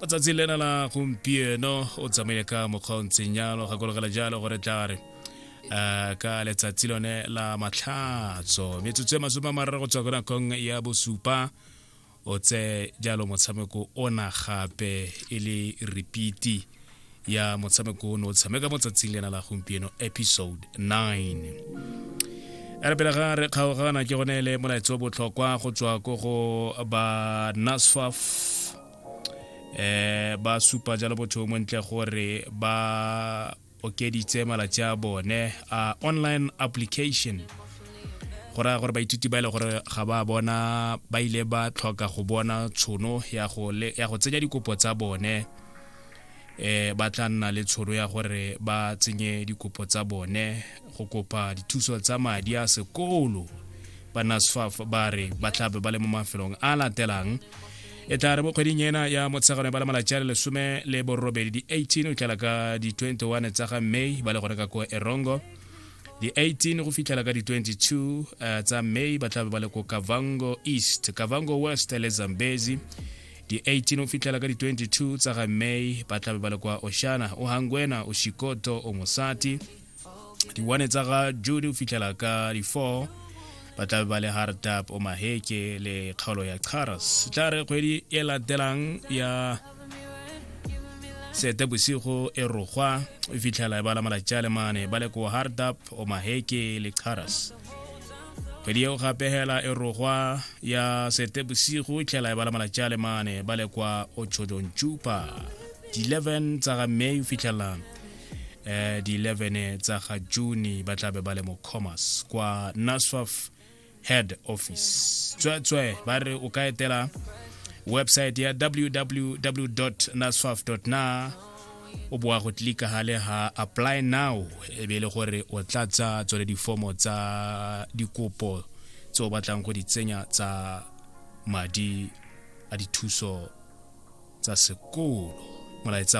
ka tsatsi lena la gompieno o tsamaile ka mokgwa o ntseng jalo gakologela jalo gore tla re um ka letsatsi lone la matlhatso metsotso e masome a mararo go tswa ko nakong ya bosupa o tse jalo motshameko ona gape e le repeati ya motshameko ono o tshameka mo tsatsing lena la gompieno episode 9 re pele ga re kgaogana ke gone le molaetso botlhokwa go tswa ko go ba nasfaf eh ba supa jalo botho mo ntle gore ba okeditse malatsi a bone a online application go raya gore baithuti ba e le gore ga ba bona ba ile ba tlhoka go bona tshono ya go tsenya dikopo tsa bone eh ba tla nna le tshoro ya gore ba tsenye dikopo tsa bone go kopa dithuso tsa madi a sekolo ba nasfaf ba re ba tlabe ba le mo mafelong a latelang e tla re mo kgweding ena ya motshegano ba le malatsi a le lesome le borobedi di-18 o tlala ka di-21 tsa ga may ba le gone ka ko erongo di-18 go fitlhela ka di-22 uh, eh, tsa may ba tlabe ba le ko kavango east kavango west le zambezi di-18 o fitlhela ka di-22 tsa ga may ba tlabe ba le kwa oshana o hangwena o shikoto o mosati di-one tsa ga jude o fitlhela ka di-4 ba tlabe ba le hardap o maheke le kgaolo ya charas tla re kgwedi e latelang ya sete bosigo e rogwa e fitlhela e bala malatsi a le mane ba le ko hardap o maheke le charas kgwedi eo gape hela e rogwa ya setebosigo tlhela e bala malatsi a le mane ba le kwa ochodontšupa di-11 tsa ga may o fitlhelela eh, di-11 tsa ga june ba tla be ba le mo commerce kwa naswaf head office tsweetswe ba re o ka etela website ya www naswaf na o boa go tlika gale ga apply now e be e le gore o tla tsa tsone difomo tsa dikopo tse o batlang go di tsenya tsa madi a dithuso tsa sekolo molaetsa